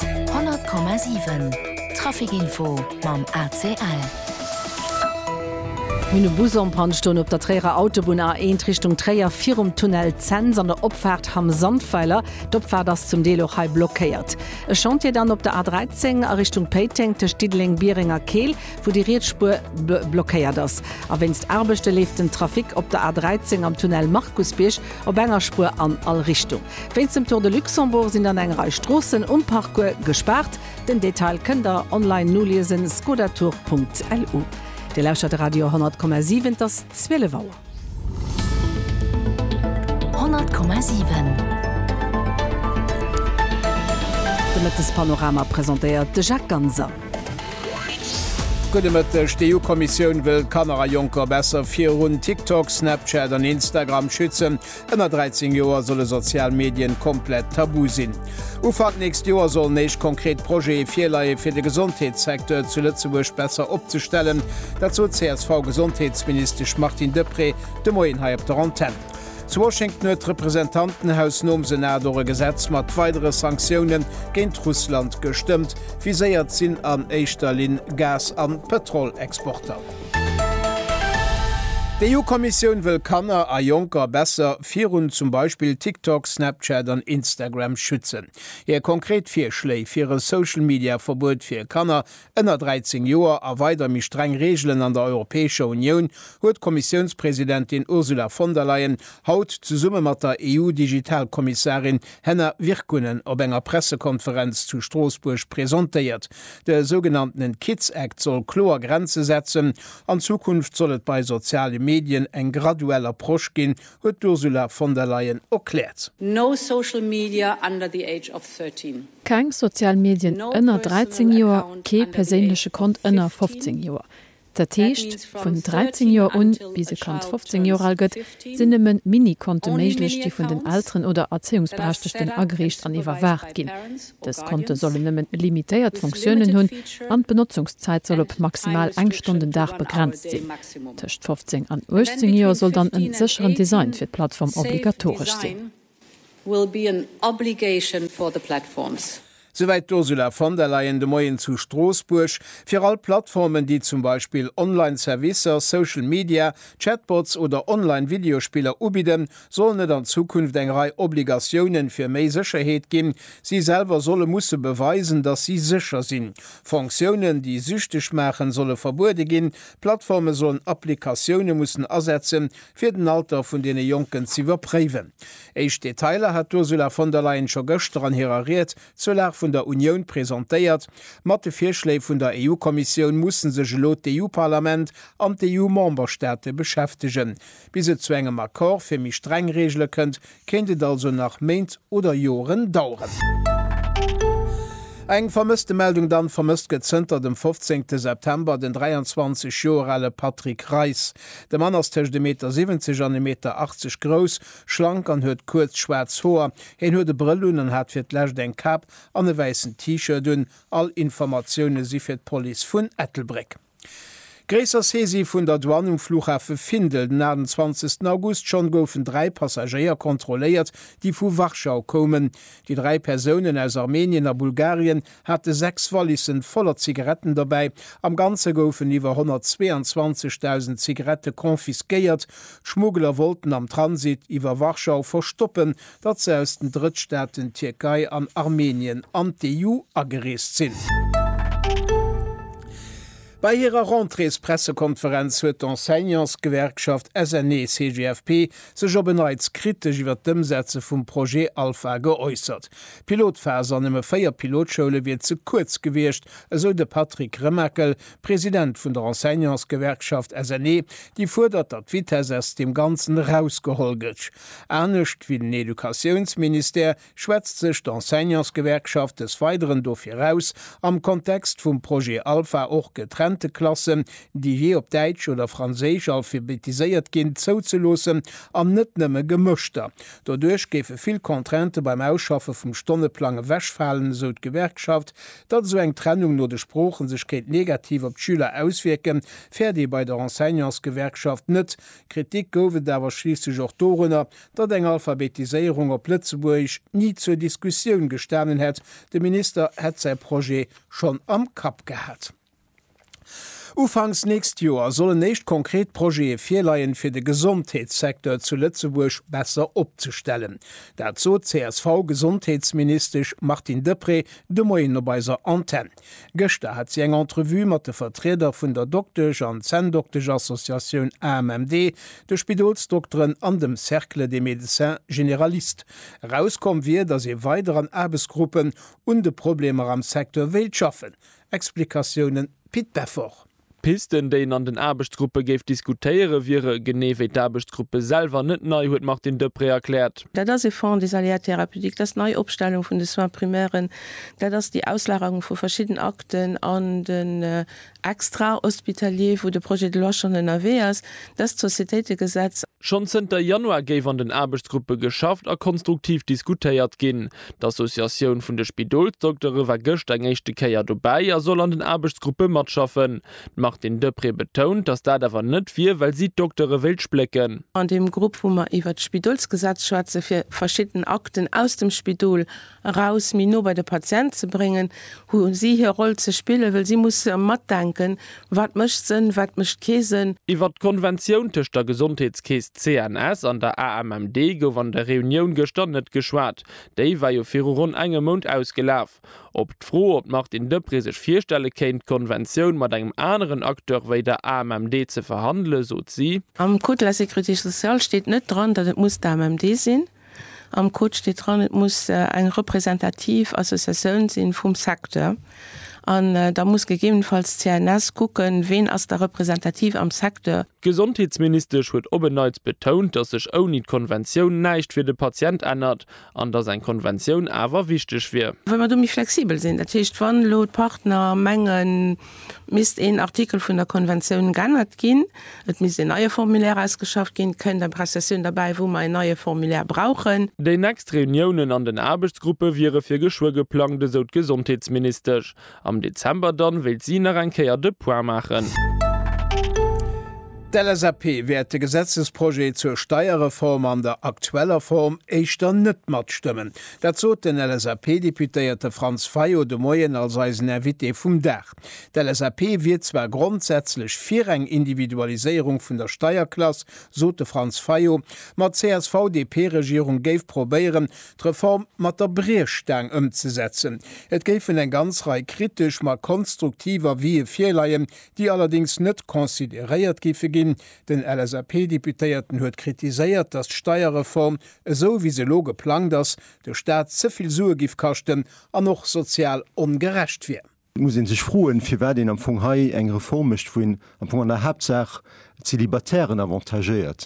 100,7 Traficinfo mam ACL. Mir hunn e Bus en Panne stoen op der Tréierer Autobunn A1 Richtung Tréier virum Tunnel Zens an der Opfaart Hamm Sandweiler. D'Opfaart ass zum Deel och hei blockéiert. E Chantier dann op der A13 a Richtung Péiteng tëscht Diddeleng, Biereng a Keel, wou déi riets Spuer blockéiert ass. A wéinst Aarbechte leeft den Trafic op der A13 am Tunnel Markusbierg op enger Spuer an all Richtung. Wéinst dem Tour de Luxembourg sinn dann eng Rei Stroossen um Parcours gespaart. Den Detail kënnt der online noliesen, skodatour.lu. Dir lauschtert de Radio 10,7, et ass 12 Auer. 10,7 De Mëttespanorama presentéiert de Jacques Ganser. Gudde Mëtteg, D'EU-Kommissioun wëll Kanner a Jonker besser virun TikTok, Snapchat an Instagram schützen. Ënner 13 Joer solle sozial Medien komplett tabu sinn. Ufank nächst Joer sollen éischt konkret Projete virleie fir de Gesondheetssecteur zu Lëtzebuerg besser opzestellen. Dat sot d'CSV-Gesondheetsministesch Martine Deprez de Moien hei op der Antenn. Zu Washington huet d'Representantenhaus nom Senat och e Gesetz mat weidere Sanktioune géint Russland gestëmmt. Viséiert sinn an éischter Linn Gas an Pëtrolexporter. D'EU-Kommissioun wëll Kanner a Jonker besser virun zum Beispill TikTok, Snapchat an Instagram schützen. Hir konkret Virschléi fir e Social-Media-Verbuet fir Kanner ënner 13 Joer a weider méi streng Reegelen an der Europäescher Unioun huet d'Kommissiounspresidentin Ursula von der Leyen haut zesumme mat der EU-Digital-Kommissarin Henna Virkkunen op enger Pressekonferenz zu Stroossbuerg presentéiert. De sougenanntenen Kids Act soll kloer Grenze setzen. An Zukunft soll et bei soziale Medien eng graduell Approche ginn, huet d'Ursula von der Leyen erkläert. No social media under the age of 13. Keng sozial Medien ënner 13 Joer, kee perséinleche Kont ënner 15 Joer. Dat heescht, vun 13 Joer un, bis e Kand 15 Joer al gëtt, sinn nëmme Mini-Konte méiglech, déi vun den Elteren oder Erzéiungsberechtegten agereecht an iwwerwaacht ginn. Dës Konte sollen nëmmen limitéiert Fonctiounen hunn an d'Benotzungszäit soll op maximal eng Stonn den Dag begrenzt sinn. Tëscht 15 an 18 Joer soll dann e sécheren Design fir d'Plattform obligatoresch sinn. will be an obligation for the platforms. Souwäit d'Ursula von der Leyen de Moien zu Stroossbuerg. Fir all Plattformen, déi zum Beispill online Servicer, Social Media, Chatbots oder online Videospiller ubidden, sollen et an Zukunft eng Rei Obligatiounen fir méi Sécherheet ginn. Si selwer solle musse beweisen, datt si sécher sinn. Fonctiounen, déi süchteg maachen, solle verbuede ginn. D'Plattforme sollen Applikatioune mussen asetzen, fir den Alter vun deene Jonken z'iwwerpréiwen. Éischt Detailer hat d'Ursula von der Leyen scho gëschter an hirer Ried zur Lag vun der Unioun presentéiert. Mat de Virschléi vun der EU-Kommissioun musse sech elo d'EU-Parlament an d'EU-Memberstaate beschäftegen. Bis et zu engem Accord fir méi streng Reegele kënnt, kéint et also nach Méint oder Joren daueren. Eng Vermësstemeldung dann, Vermësst gëtt zënter dem 15 September den 23 Joer ale Patrick Reis. De Mann ass tëscht e Meter 70 an e Meter 80 grouss, schlank an huet kuerz schwaarz Hoer. Hien huet e Brëll un an hat fir d'lescht eng Kap an e wäissen T-Shirt un. All Informatioune si fir d'Police vun Ettelbréck. Gréisser Saisie vun der Douane um Flughafe Findel den 28 August. Schonn goufen dräi Passagéier kontrolléiert, déi vu Warschau koumen. Déi dräi Persounen aus Armenien a Bulgarien hate sechs Wallissen voller Zigaretten dobäi. Am Ganze goufen iwwer 122.000 Zigarette confisquéiert. D'Schmuggler wollten am Transit iwwer Warschau verstoppen, datt se aus den Drëttstaaten Tierkei an Armenien an d'EU agereest sinn. Bei hirer Rentréespressekonferenz huet d'Enseignantsgewerkschaft SNE-CGFP sech op en Neits kritesch iwwer d'Ëmsetze vum Projet Alpha geäussert. D'Pilotphas an nëmme 4 Pilotschoule wier ze kuerz gewiescht, esou de Patrick Remakel, President vun der Enseignantsgewerkschaft SNE, déi fuerdert, datt d'Vitess aus deem Ganzen erausgeholl gëtsch. Anescht wéi den Educatiounsministère schwätzt sech d'Enseignantsgewerkschaft des Weideren dofir aus, am Kontext vum Projet Alpha och getrennte Klassen, déi jee op Däitsch oder Franséisch alphabetiséiert ginn, zouzeloossen an net nëmme gemëschter. Doduerch géife vill Contraintë beim Ausschaffe vum Stonneplang ewechfalen, esou d'Gewerkschaft. Datt esou eng Trennung no de Sproochen sech kéint negativ op d'Schüler auswierken, fäert ee bei der Enseignantsgewerkschaft net. Kritik gouf et awer schliisslech och dorunner, datt eng Alphabetiséierung op Lëtzebuergesch ni zur Diskussioun gestanen hätt, de Minister hätt säi Projet schonn am Kapp gehat. Ufanks nächst Joer sollen éischt konkret Projete virleien, fir de Gesondheetssecteur zu Lëtzebuerg besser opzestellen. Dat sot d'CSV-Gesondheetsministesch Martine Deprez de Moien op eiser Antenn. Gëschter hat si eng Entrevue mat de Vertrieder vun der Doktesch an Zänndoktesch-Associatioun AMMD, de Spidolsdokteren an dem Cercle des médecins généralistes. Erauskomm wier, datt ee weider an Aarbechtsgruppen un de Problemer am Secteur wéilt schaffen. Explikatiounen, Pit Beffort. Pisten, déi een an den Aarbechtsgruppe géif diskutéiere wiere genee wéi d'Aarbechtsgruppe selwer net nei, huet d'Martine Deprez erkläert. Dat ass e Fonds des aléas thérapeutiques, dat ass d'Neiopstellung vun de Soins primairen, dat ass déi Auslagerung vu verschidden Akten an den Extrahospitalier, wou de Projet de loi schonn ënnerwee ass, dat ass d'Societéitegesetz. Schonn zënter Januar géif an den Aarbechtsgruppe geschafft a konstruktiv diskutéiert ginn. D'Associatioun vun de Spidolsdoktere war gëscht eng éischte Kéier dobäi a soll an den Aarbechtsgruppe matschaffen. D'Martine Deprez betount, datt dat awer net wier, well si d'Doktere wéilt splécken. An deem Grupp, wou mer iwwert d'Spidolsgesetz schwätzen, fir verschidden Akten aus dem Spidol eraus méi no bei de Patient ze bréngen, hu si hir Roll ze spillen, well si musse matdenken, Wat mécht Sënn, wat mécht kee Sënn? Iwwert d'Konventioun tëscht der Gesondheetskeess CNS an der AMMD gouf an der Reunioun gëschter net geschwat. Déi war jo viru ronn engem Mount ausgelaf. Op d'Fro, ob d'Martine Deprez sech virstelle kéint, d'Konventioun mat engem aneren Acteur wéi der AMMD ze verhandelen, sot si. Am Code de la sécurité sociale steet net dran, datt et muss d'AMMD sinn. Am Code steet dran, et muss eng representativ Associatioun si vum Secteur. An da muss gegebenenfalls d'CNS kucken, ween ass da representativ am Secteur. D'Gesondheetsministesch huet op en Neits betount, datt sech ouni d'Konventioun näischt fir de Patient ännert an datt eng Konventioun awer wichteg wier. Well mer do méi flexibel sinn. Dat heescht, wann elo d'Partner mengen, Misst een Artikel vun der Konventioun g'ännert ginn, et misst een neie Formulaire ausgeschafft ginn, kënnt eng Prestatiou'n derbäi, wou mer een neie Formulaire brauchen. Déi nächst Reuniounen an den Aarbechtsgruppe wiere fir geschwë geplangt, esou d'Gesondheetsministesch. Am Dezember dann wéilt si nach eng Kéier de Point maachen. D'LSAP wäert de Gesetzesprojet zur Steierreform an der aktueller Form éischter net matstëmmen. Dat sot den LSAP-Deputéierte Franz Fayot de Moien als eisen Invité vum Dag. D'LSAP wier zwar grondsätzlech fir eng Individualiséierung vun der Steierklass, sot de Franz Fayot, ma d'CSV-DP-Regierung géif probéieren, d'Reform mat der Briechstaang ëmzesetzen. Et géifen eng ganz Rei kritesch, ma konstruktiv Avisë virleien, déi allerdéngs net consideréiert géife ginn. Den LSAP-Deputéierten huet kritiséiert, datt d'Steierreform esou wéi se elo geplangt ass, de Staat ze vill Sue giff kaschten an och sozial ongerecht wier. Et muss ee sech froen, firwat een am Fong hei eng Reform mécht, wou een am Fong an der Haaptsaach d'Célibataires avantagéiert.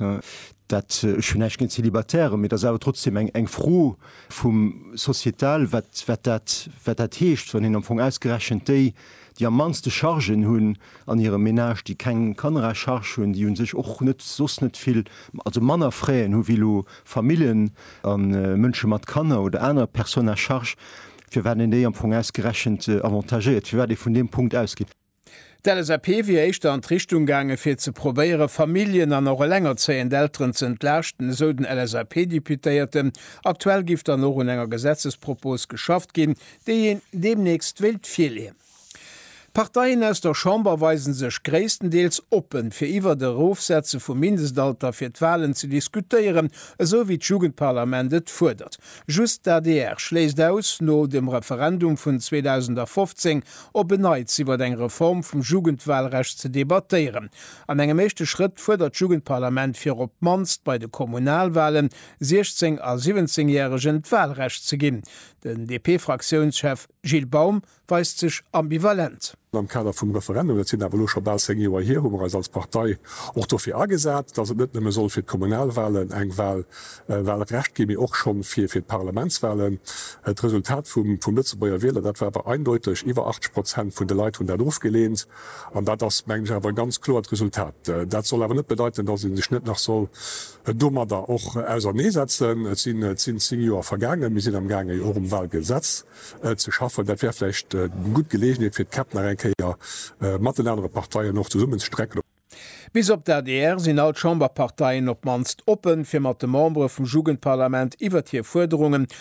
Dat, ech hunn näischt géint d'Célibataires, mee et ass awer trotzdem eng, eng Fro vum sociétal, wat, wat dat, wat dat heescht, wann een am Fong ausgerechent déi, déi am mannste Chargen hunn an hirem Menage, déi keng Kanner à charge hunn, déi u sech och net soss net vill, also manner Fräen hu wéi elo Familljen a Mënsche mat Kanner oder aner Personnes à charges, firwat een déi am Fong ausgerechent avantagéiert, firwat ee vun deem Punkt ausgeet. D'LSAP wier éischter an d'Richtung gaange fir ze probéiere Familljen an och elengerzéiend Elteren ze entlaaschten, esou den LSAP-Deputéierten. Aktuell giff dann och un enger Gesetzespropos geschafft ginn, déi een deemnächst wéilt virleeën. D'Parteien aus der Chamber weise sech gréisstendeels oppen, fir iwwert Erofsetze vum Mindestalter fir d'Walen ze diskutéieren, esou wéi d'Jugendparlament et fuerdert. Just d'ADR schléisst aus, no dem Referendum vun 2015 op en Neits iwwert eng Reform vum Jugendwalrecht ze debattéieren. An engem éischte Schrëtt fuerdert d'Jugendparlament fir op d'mannst bei de Kommunalwalen 16 a 17 Järegen d'Walrecht ze ginn. Den DP-Fraktiounschef Gilles Baum weist sech ambivalent. Am Kader vum Referendum, dat sinn awer elo scho bal zéng Joer hier, hu mer eis als Partei och dofir agesat, dass et net nëmme soll fir d'Kommunalwahlen eng Wahl, e Wahlrecht ginn, mee och scho fir d'Parlamentswahlen. D'Resultat vum Lëtzebuerger Wieler, dat war awer eindeuteg, Iwwer 80 Prozent vun de Leit hunn dat ofgeleent. An dat ass, mengen ech, awer e ganz kloert Resultat. Dat soll awer net bedeiten, dass ee sech net nach soll domadder och auserneesetzen. Et sinn zéng zéng Joer vergaangen, mir sinn amgaangen och um Walgesetz ze schaffen. Dat wär vläicht eng gutt Geleegenheet fir d'Käpp nach eng Kéier mat den anere Parteien och zesummen ze strecken. Bis op d'ADR sinn all d'Chamberparteien op d'mannst oppen, fir mat de Membere vum Jugendparlament iwwert hir Fuerderungen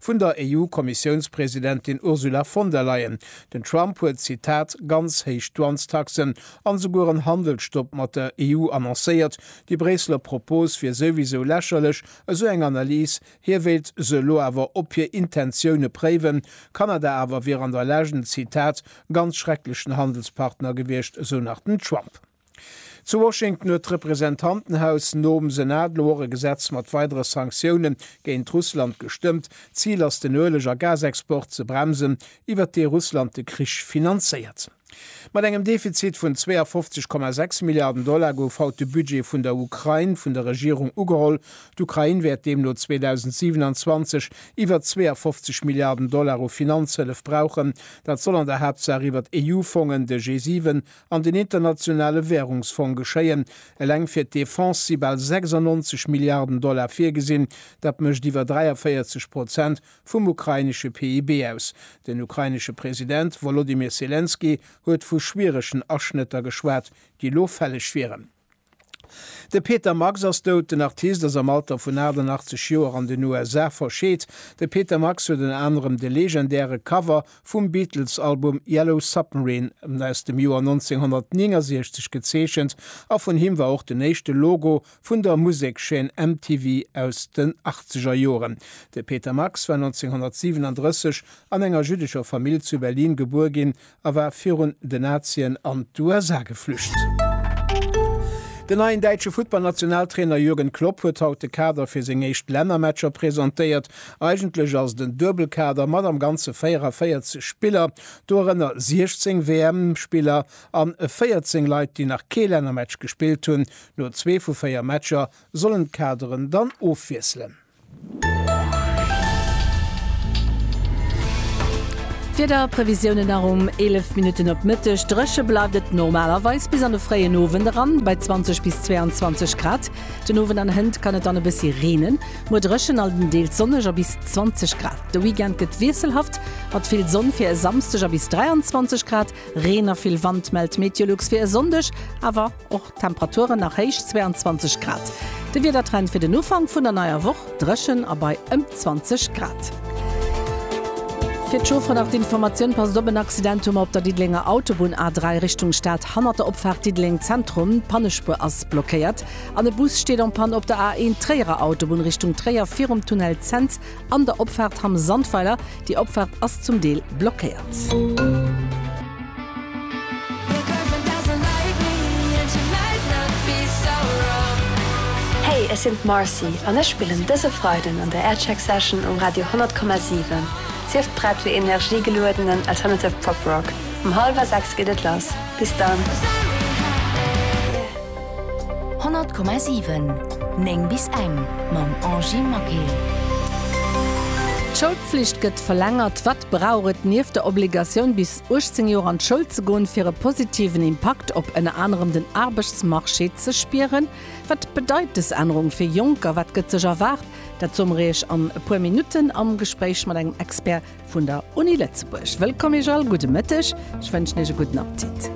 Vun der EU-Kommissiounspresidentin Ursula von der Leyen. Den Trump huet, Zitat, ganz héich Douanestaxen an esouguer en Handelsstopp mat der EU annoncéiert. Déi Bréisseler Propos wier souwisou lächerlech, esou eng Analys. Hie wéilt se elo awer op hir Intentioune préiwen. Kanada awer wier an der Legend, Zitat, ganz schrecklechen Handelspartner gewiescht, esou nach den Trump. Zu Washington huet d'Representantenhaus nom Senat elo och e Gesetz mat weidere Sanktioune géint Russland gestëmmt. D'Zil ass den Ueleg a Gasexport ze bremsen, iwwert dee Russland de Krich finanzéiert. Mat engem Defizit vun 52,6 Milliarden Dollar gouf haut de Budget vun der Ukrain vun der Regierung ugeholl. D'Ukrain wäert deemno 2027 iwwer 52 Milliarden Dollar u Finanzhëllef brauchen. Dat soll an der Haaptsaach iwwert EU-Fongen, de G7 an den Internationale Währungsfong geschéien. Eleng fir d'Defense si bal 96 Milliarden Dollar virgesinn. Dat mécht iwwer 43 Prozent vum ukrainesche PIB aus. Den ukrainesche President Wolodymyr Selenskyj huet vu schwieregen Aschnëtter geschwat, déi elo fälleg wieren. De Peter Max ass dout. Den Artist ass am Alter vun 88 Joer an den USA verscheet. De Peter Max huet ënner anerem de legendäre Cover vum Beatles-Album Yellow Submarine aus dem Joer 1969 gezeechent a vun him war och den éischte Logo vun der Musekschaîne MTV aus den achtzeger Joren. De Peter Max war 1937 an enger jüddescher Famill zu Berlin gebuer ginn a war virun den Nazien an d'USA geflücht. Den neien däitsche Futtballnationaltrainer Jürgen Klopp huet haut de Kader fir seng éischt Lännermatcher presentéiert. Eigentlech ass et en Duebelkader mat am Ganze 44 Spiller, dorënner 16 WM-Spiller an 14 Leit, déi nach kee Lännermatch gespillt hunn. No zwee vu véier Matcher sollen d'Kaderen dann ofwiesselen. Wiederprevisiounen nach um 11 Minutten op Mëtteg, Dréche bleift et normalerweis bis an de fréien Owend eran bei 20 bis 22 Grad. Den Owend an Hënt kann et dann e bëssi reenen. Muer dréchen a deels sonneg a bis 20 Grad. De Weekend gëtt wiesselhaft mat vill Sonn fir e Samsdeg a bis 23 Grad. Reen a vill Wand mellt Meteolux fir e Sonndeg awer. Och d'Temperaturen nach héich, 22 Grad. De Wiedertrend fir den Ufank vun der neier Woch, Dréchen a bei ëm 20 Grad. Fir d'Chauffer nach d'Informatioun, Passt op, en Accident hu mer op der Diddelenger Autobunn A3 Richtung Stad hannert der Opfaart Diddeleng Zentrum. D'Pannespuer ass blockéiert an e Bus steet en Panne op der A1 Tréierer Autobunn Richtung Tréier virum Tunnel Cents. An der Opfaart Hamm Sandweiler, déi Opfaart ass zum Deel blockéiert. Hey, ech sinn d'Marcy an ech spillen dëse Freiden an der Aircheck Session um Radio 100,7. Sief prett fir energiegeluedenen alternative Pop Rock. Um hallwer 6 geet et lass. Bis dann! 100,7 9 bis eng mam Angie Maquil. D'Schoulpflicht gëtt verlängert, Wat brauch et nieft der Obligatioun bis 18 Joer an d'Schoul ze goen, fir e positiven Impakt op ënner anerem den Aarbechtsmarché ze spieren? Wat bedeit dës Ännerung fir Jonker? Wat gëtt sech erwaart? Dat soe mer Iech an e puer Minutten am Gespréich mat engem Expert vun der Uni Lëtzebuerg. Wëllkomm Iech all, gudde Mëtteg, ech wënschen Iech e gudden Appetit.